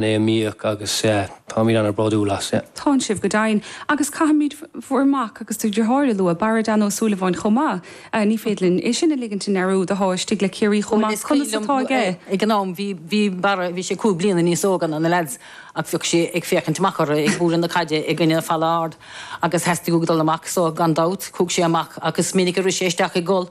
lena mbíodh agus táimid an-bhródúil as. tánn sibh go deimhin agus caithfimid bhur mac agus do dhriotháir a lua, Barra Dan O Súilleabháin chomh maith. Ní féidir linn é sin a ligint i ndearúd go háirithe le Ciarraí chomh maith. Conas atá aige? Ag an am, bhí Barra, bhí sé cúig bliana níos óga ná na leaids ach bhíodh sé ag féachaint amach orthu ag bualadh na caide i gcoinne falla ard agus theastaigh uaidh dul amach so gan dabht, chuaigh sé amach ach is minic a rith sé isteach ag gol.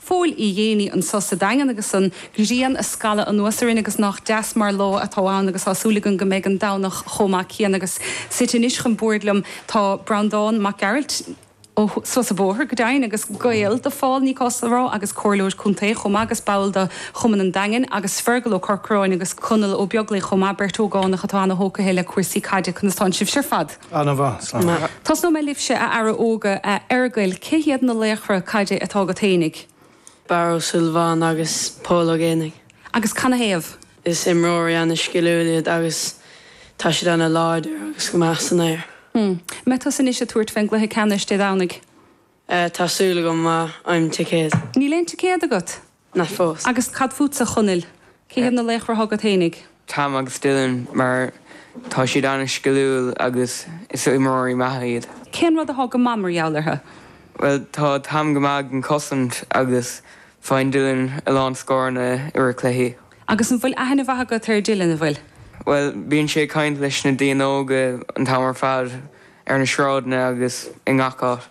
Phóil Uí Dhéanaí anso sa Daingean agus an ghrian a scalladh anuas orainn agus nach deas mar lá atá ann agus tá súil againn go mbeidh an Domhnach chomh maith céanna agus suite anois chun boird liom tá Breandán Mac Gearailt ó Sruth sa Bhóthar go deimhin agus gaol do Phól ní gá a rá agus Comhairleoir Contae chomh maith agus ball do Chumann an Daingin agus Fergal Ó Corcráin agus Conall Ó Beaglaoi chomh maith, beirt ógánach atá ana-thógtha le cúrsaí caide, conas tánn sibhse ar fad? Ana mhaith, Sam. Tosnóidh mé libhse, a fheara óga, a Fheargail, cé hiad na laochra caide atá agat fhéinig? Barra Ó Súilleabháin agus Pól Ó Géibheannaigh. Agus canathaobh? Is imreoirí ana sciliúil iad agus tá siad ana láidir agus go maith san aer. Hm. Mbeidh tusa anois ag tabhairt fén gcluiche ceannais Dé Domhnaigh. Eh, tá súil agam, má fhaighim ticéad. Níl aon ticéad agat? ná fós. Agus cad fútsa, a Chonaill? Cé hiad na laochra agat fhéinig? Tom agus Dylan, mar tá siad an-sciliúil agus is imreoirí maithe iad. Cén rud atá go maith mar gheall orthu? Bhuel, tá Tom go maith ag an chosaint agus faigheann Dylan a lán scóranna i rith cluichí. Agus an bhfuil aithne mhaith agat ar Dylan, an bhfuil? Bhuel, bíonn sé ag caint leis na daoine óga an t-am ar fad, ar na sráideanna agus i ngach áit.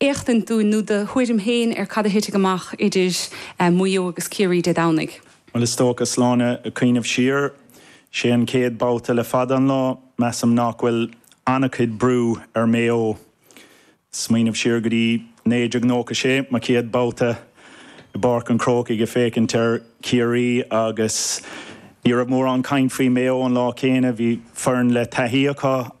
éachtaint dúinn, nó do thuairim féin, ar cad a thitfidh amach idir Maigh Eo agus Ciarraí Dé Domhnaigh. Bhuel, is dócha, is mé ag cuimhneamh siar, sé an chéad bhabhta le fada an lá, measaim nach bhfuil an-chuid brú ar Mhaigh Eo. ag smaoineamh siar go dtí 1996, mo chéad bhabhta i bPáirc an Chrócaigh ag féachaint ar Chiarraí agus ní raibh mórán caint faoi Mhaigh Eo an lá céanna. Bhí foireann le taithí acu.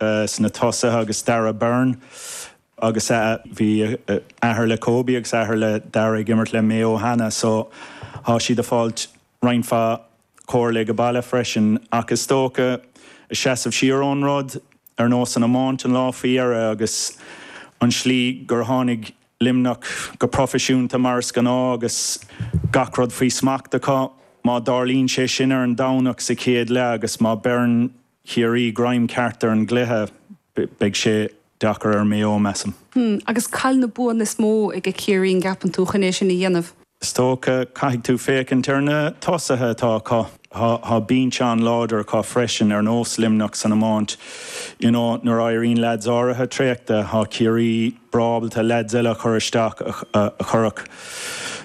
sna tosaithe agus Dara Byrne agus a bhí athair le Kobe agus athair le Dara ag imirt le Maigh Eo cheana so tá siad ag fáilt roinnt mhaith comhairle age baile freisin ach is dócha ag seasamh siar ón rud ar nós an iomáint an lá faoi dheireadh agus an slí gur tháinig Luimneach go proifisiúnta mar is gnáth agus gach rud faoi smacht acu má tharlaíonn sé sin ar an Domhnach sa chéad leath agus má beireann Ciarraí greim ceart ar an gcluiche, beidh sé deacair ar Mhaigh Eo, measaim. Hmm. Agus cad iad na buanna is mó aige Ciarraí, an gceapann tú, chun é sin a dhéanamh? Is dócha, caithfidh tú féachaint ar na tosaithe atá acu. Tá binse an-láidir acu freisin, ar nós Luimneach san iomáint. You know, nuair a éiríonn leaids áirithe traochta, tá Ciarraí breá ábalta leaids eile a chur isteach, a chuirfeadh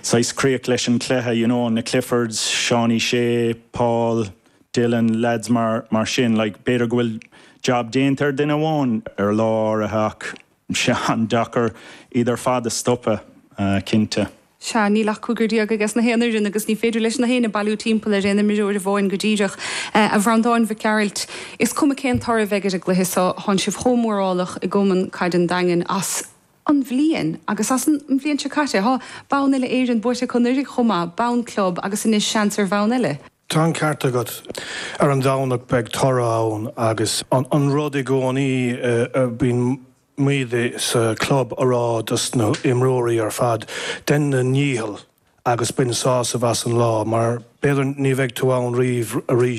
saghas críoch leis an chluiche, you know, na Cliffords, Seánie Sé, Paul. Dillon, leaids mar sin, like, b'fhéidir go bhfuil jab déanta ar duine amháin ar lá áirithe ach tá sé an-deacair iad ar fad a stopadh, cinnte. Sea, níl ach cúigear déag aiges na haon fhoireann agus ní féidir leis na héinne bailiú timpeall ar aon imreoir amháin go díreach. A Bhreandáin Mhic Gearailt, is cuma cén toradh a bheidh ar an gcluiche so, tánn sibh chomh mórálach i gCumann Caide an Daingin as, an mbliain, agus as an mbliain seo caite, tá bonn uile Éireann buaite acu anuraidh chomh maith, bonn club agus anois seans ar bhonn eile. Tá an ceart agat. Ar an Domhnach beidh toradh ann agus an rud i gcónaí a bíonn muid sa chlub a rá dos na h-imreoirí ar fad, dein do ndícheall agus bain sásamh as an lá mar b'fhéidir ní bheidh tú ann riamh arís.